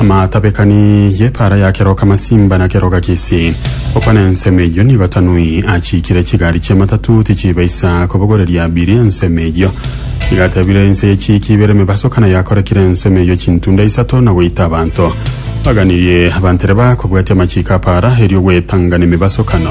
Amatabekani y'epaara ya keroka masimba na keroka kisi, okwa na ensemo eyio nigo Tanui achiikire chigari chi'amatatu tichibaisa kobogoreria abiri ensemo eyio. Igatebire ense y'echiiki ibere emebaso kana yakorekire ensemo eyio chintunda isato na goita abanto. Baganirie abanto ere bakobwatia amachiiko a paara erio gwetangana emebasokano.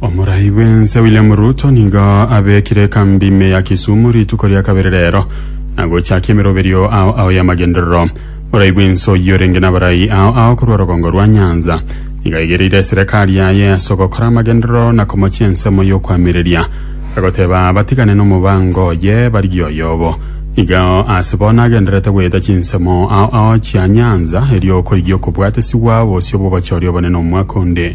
Omorai bw'ense William Ruto nigo abekire ekambi ime ya Kisumu rituko ria kabere rero na gochakia emeroberio ao ao y'amagenderero. Omorai bw'ense oyio orenge n'abarai ao ao korwa rogongo rwa Nyanza nigo aigereire eserekari yaye ase ogokora amagenderero na komochia ensemo y'okoamereria, agoteba batigane n'omobango oye barigie oyobo. Nigo ase bono agendererete goeta chinsemo ao ao chia Nyanza erio okorigia okobwatesigwa bosio bw'obochori obonene omwaka onde.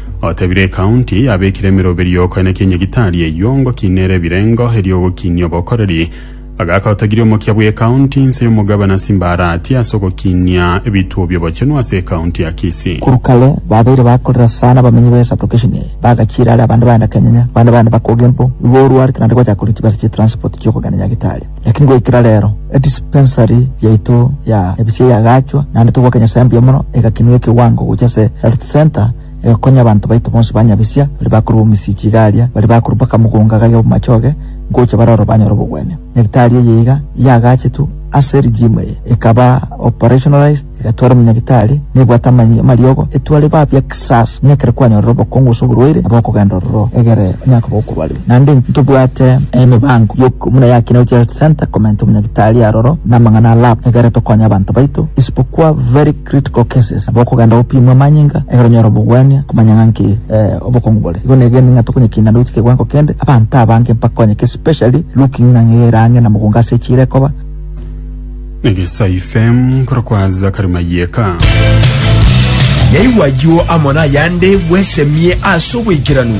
Otebire Ekaunti yabekire emeroberio y'okoenekia Nyagitari eyio ngoki nere ebirengo erio ogokinia obokoreri. Agaka otagiria omokia bw'Ekaunti inse y'omogabana Simbarati ase ogokinia ebituo bi'obochenu ase Ekaunti ya Kisii. Korwa kare babeire bakorera sana abamenyi be sublocation eye, bagachiira are abande baenda Kenyanya, abande baenda Bakoge mpo igo orwarete naende gwachaka koreta chibesa chie transport chi'okogenda Nyagitari. Lakini goikera reero, edispensari yaito ya ebisio yagaachwa, naende togwaka Nyasae mbuya mono, egakinwa ekewango gochia ase health centre, egakonya abanto baito bonsi ba Nyabisia, baria bakorwa bomisiichi iga aria, baria bakorwa mpaka mogonga gaiga bw'amachoge, ngocha bare oro banyore obogwenia. Nyagitari eye iga yagaachetwe ase rigimu eye, ekaba operationalized, Egetware omonyagitari nebwate amanyinga amariogo, etware babe ekisaasi, ng'a ekero kwanyorire obokongu gose oborwaire, nabo okogenda ororo egere onye koba okobarire. Naende ntobwate emebango y'okoigwa buna ya Kineut Health Centre komenta omonyagitari aroro na amang'ana a lab egere tokonye abanto baito, isibokwa very critical cases, nabo okogenda gopimwa amanyinga egere onyore obogwenia komanya ng'a nki obokongu bore. Igo negene ng'a tokonyekinda noiti kewango kende abanto abange mpakonyeke especially looking ng'a ng'eira ang'e na mogongo ase echiira ekoba. Negesaife korwa kwa Zakari Mayeka. Yaigwa ayio amo nayande, bwesemie ase obwaikeranu.